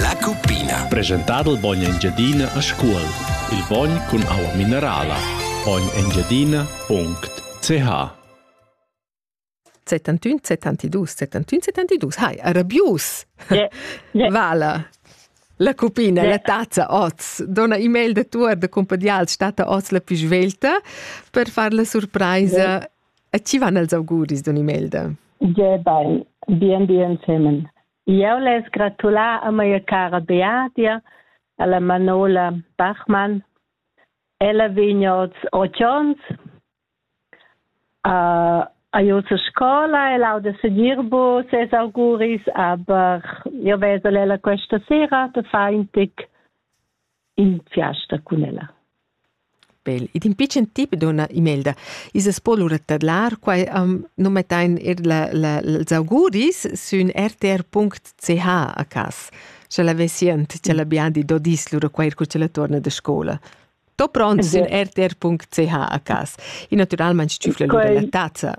La cuppina. Presentà dal bogn Engiadina a Scuol. Il bogn cun aua minerala. bognengiadina.ch Settantun, settantidus, settantun, settantidus. Hai, arabius! Yeah. Yeah. Vala. La cupina, yeah. la tazza oz. Dona e-mail de tuor de compadial stata oz la più svelta per far la surpresa. Yeah. E ci van els auguris don e-mail de? Yeah, bene. Bien, bien, semen. Jeu less gratular a mia cara Beadia, alla Manola Bachmann. Ella vegn oz otg onns uh, a Jose scola e lauda segir bu ses auguris, aber io vesel ella questa sera, te fa in tic in fiasta cun ella. Bel. Ed in pitschen tip, donna Imelda, is es po lura tadlar, quai am nu mettain er la, la, els auguris sün rtr.ch a cas. Scha la vesiant, cha la biandi do dis lura quair cu cha la torna de scola. To pront sün rtr.ch a cas. E naturalmaing tschüfla lura la tazza.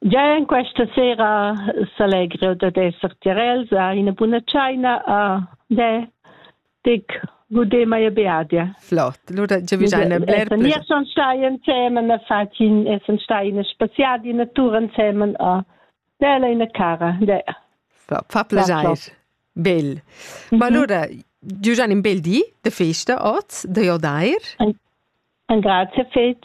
Gia en questa sera s'allegra jeu dad esser tiarels a ina buna tscheina a de dic gudé mia beadia. Flott. Lura giavischein ein bler pli. Nies son stai ensemen a fatin, essen stai in spaziadi natur ensemen a della ina cara. De. Fa piacere. Bel. Ma allora, Giugian un bel di de festa oz de Jordair. Un grazie fetg.